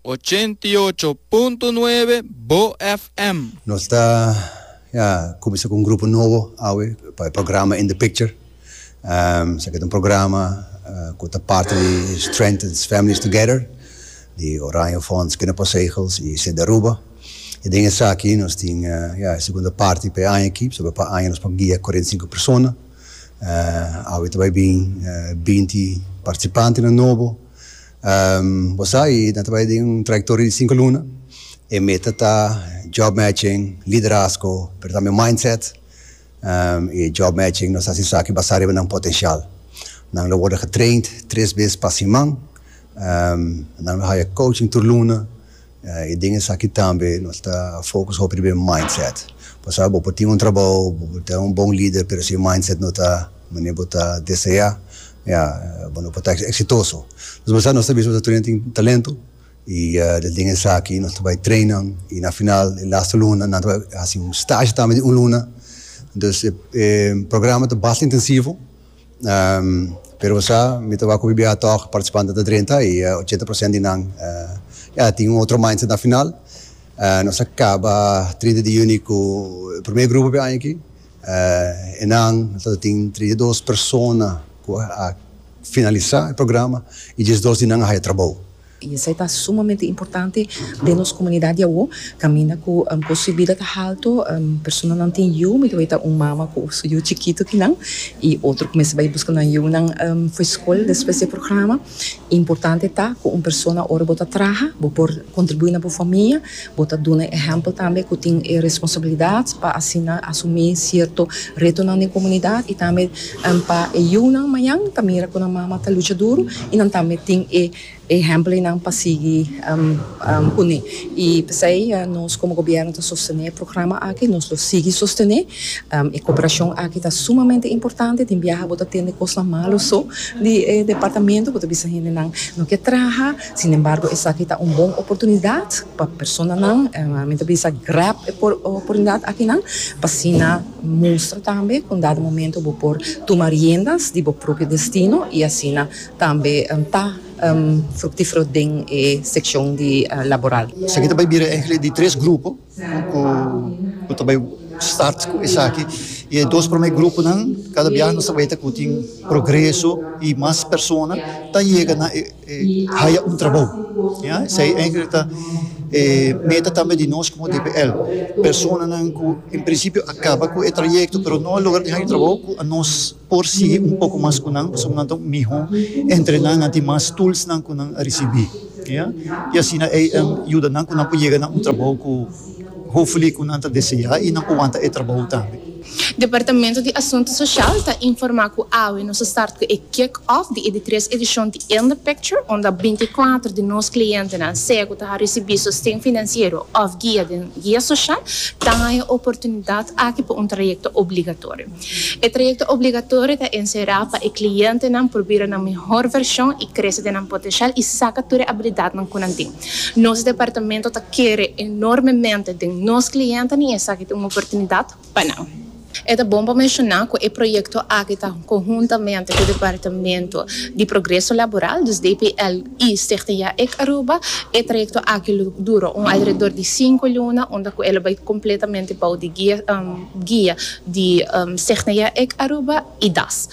Ochenta i ocho punto nuebe Bo FM. Nos ta ya cuminsa cu un grupo nobo awe pa e programa In the Picture. Esaki ta un programa cu ta parti di Strengthens Families Together di Oranje Fonds, Kinderpostzegels y Sint Aruba. Y den esaki nos tin ya e segunda parti pa e aña aki pasobra pa aña nos por guia cuarenta y cinco persona. Awe ta bay bin binti participantenan nobo Bo sa, i nan trabaya den un trayektoria di sinku luna. E meta ta job matching, liderazgo, pero tambe mindset. E job matching nos ta hasi esaki basá riba nan potenshal. Nan lo wòrdu getraind tres bes pa siman. Nan lo haya coaching tur luna. I den esaki tambe nos ta focus hopi riba e mindset. Pasaba bo por tin un trabou, bo por ta un bon lider, pero si e mindset no ta manera bo ta desea, ya, bo no por ta exitoso. Entonces pasaba nos ta bisa bo ta turinan tin talento i ta den esaki nos ta bai trainan i na final e laste luna nan ta bai hasi un stage tambe di un luna. Entonces e programa ta basta intensivo. Pero bo sa, mi ta wak ku BBH tòg partisipantenan ta drenta i ochenta por sènt di nan ya tin un otro mindset na final. Nos a kaba trinta di yüni ku e promé grupo p'e aña aki. Enan ta tin trinta i dos persona ku a finalisá e programa i diesdos di nan a haya trabou. I esei ta sumamente importante den nos komunidat di awor, kaminda ku kost di bida ta haltu, personanan tin yu, mi ta weta un mama ku su yu chikitu kinan, i otro ku mester bai buska nan yunan for skol despues di e programa. Importante ta ku un persona ora bo ta traha bo por kontribuí na bo famia, bo ta duna e ehèmpel tambe ku tin e responsabilidat pa asina asumí sierto retonan den komunidat i tambe pa e yunan mañan ta mira ku nan mama ta lucha duru i nan tambe tin e. E ehèmpelnan pa sigui pone i p'esei nos komo gobièrnu ta sostené e programa aki, nos lo sigui sostené. E koperashon aki ta sumamente importante, tin biaha bo ta tende kosnan malu so di e departamentu, bo ta bisa hendenan no ke traha, sin embargo esaki ta un bon oportunidat pa personanan, mi ta bisa grab e oportunidat akinan pa asina mustra tambe kundado momento bo por tuma riendas di bo propio destino i asina Tambe ta fruktifero den e sekshon di laboral. Esaki ta bai bira enkele di tres grupo ku ta bai start ku esaki i e dos promé gruponan kada biaha nos ta bai ta ku tin progreso i mas persona ta yega na e haya un trabou. Esei enkele ta e meta tambe di nos komo DPL. Personanan ku en prinsipio a kaba ku e trayekto pero no a logra di haña trabou ku a nos. por sigui un poko mas ku nan pasobra nan ta un mihó entre nan, nan tin mas toolsnan ku nan a risibí, ya, i asina ei a yuda nan ku nan por yega na un trabou ku hopefully ku nan ta deseá i nan por wanta e trabou tambe. Departamento di Asuntu Sosial ta informá ku awe nos a start ku e kick off di e di tres edishon di In The Picture unda binti i kuater di nos klientenan, sea ku ta a risibí sosten finansiero òf guia den guia sosial, ta haña e oportunidat aki pa un trayekto obligatorio. E trayecto obligatorio ta encerá pa e clientenan por bira nan mihor version y crece den nan potencial y saca tur e habilidadnan cu nan tin. Nos departamento ta kere enormemente den nos clientnan y esaki ta un oportunidad pa nan. E ta bon pa menciona cu e proyecto aki ta conhuntamente cu Departamento di Progreso Laboral, dus DPL, y Stichting JAEC Aruba. E trayecto aki lo dura un alrededor di cinco luna unda cu e lo bay completamente bou di guia. guia di Segneia ec Aruba y das.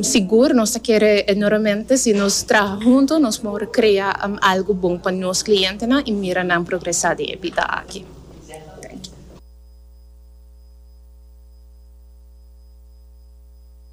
Sigur nos ta kere enormemente si nos traha hunto nos por crea algo bon pa nos clientenan y mira nan progresa den e bida aki.